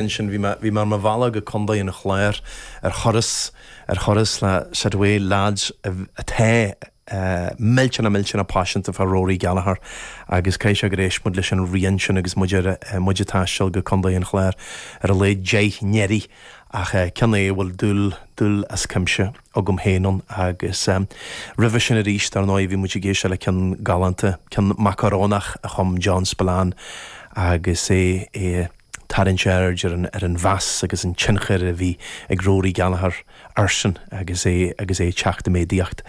ansin bhí mé, bhí mé ar mo bhealach go Contae an Chláir ar thuras, ar thuras le scaifte lads a, atá millteanach, millteanach paiseanta fá Rory Gallagher agus caithfidh sé gur éist muid leis an rian sin agus muid ar, muid a' taisteal go Contae an Chláir ar a laghad deich n-uaire ach eh ceann é a bhfuil dúil, dúil as cuimse agam féin ann agus eh roimhe sin aríst dar ndóigh bhí muid ag éisteacht le ceann galánta, ceann macarónach a chum John Spillane agus é, é a. Tarraingt aird ar an mheas agus an tionchar a bhí ag Rory Gallagher airsean agus é agus é ag teacht i méadaíocht.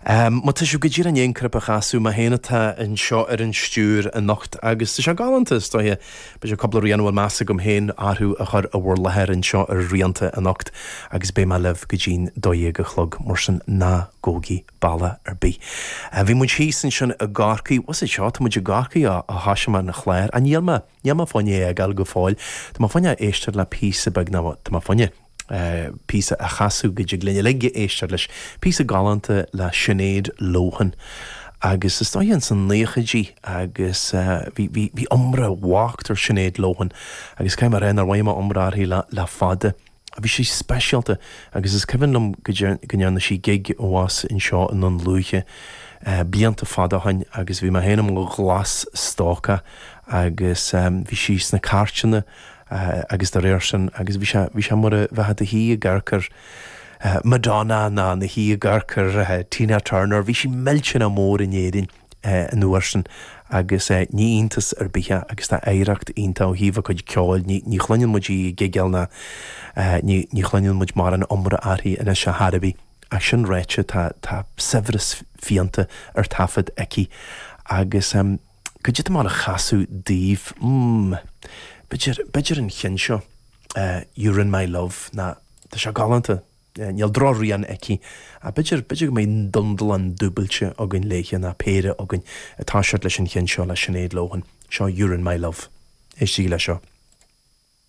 Má tá sibh go díreach i ndiaidh an cnaipe a chasadh, mé féin atá anseo ar an stiúir anocht, agus tá sé galánta is dóiche, b'fhéidir cúpla rian a bhfuil meas agam féin orthu a chur i bhur láthair anseo ar Rianta anocht agus beidh mé libh go dtí'n dó dhéag a chlog, mar sin ná gabhaigí bealach ar bith. Bhí muid thíos ansin i gCorcaigh, was it seo, tá muid i gCorcaigh ó thoisigh mé an clár, agus níl mé Níl mé fá choinne é a fhágáil go fóill. Tá mé fá choinne éisteacht le píosa beag ná tá mé fá choinne píosa a chasadh go dtig linn uilig éisteacht leis. Píosa galánta le Sinéad Lohan. Agus is dóiche ins na naochaidí agus bhí iomrá mhaith ar Sinéad Lohan agus caithfidh mé a rá nár mhothaigh mé iomrá uirthi le fada. Bhí sí speisialta agus is cuimhin liom go ndearna sí gig abhus anseo i nDún Lúiche blianta fada ó shin agus bhí mé féin i mo ghlas-stócach agus bhí sí sna cairteanna agus dá réir sin agus bhí sé, bhí sé mar a bheifeá i do shuí i gcarcair Madonna ná do shuí i gcarcair Tina Turner, bhí sí millteanach mór in Éirinn. an uair sin agus ní iontas ar bith é agus tá oidhreacht iontach ó thaobh a cuid ceoil, ní chluineann muid í ag gigeáil ná ní chluineann muid mórán iomrá uirthi anois a thar a bhí. Ach sin ráite tá saibhreas rianta ar taifead aici agus caidé atá mé ag gabháil a chasadh daoibh mm b'fhéidir, b'fhéidir an ceann seo, You're In My Love, ná tá sé galánta. Níl drochrian aici, ach b'fhéidir, b'fhéidir go mbeidh dundalán dúbailte againn léithe, ná péire againn, ag toiseacht leis an cheann seo le Sinéad Lohan. Seo You're in My Love. Éistigí le seo.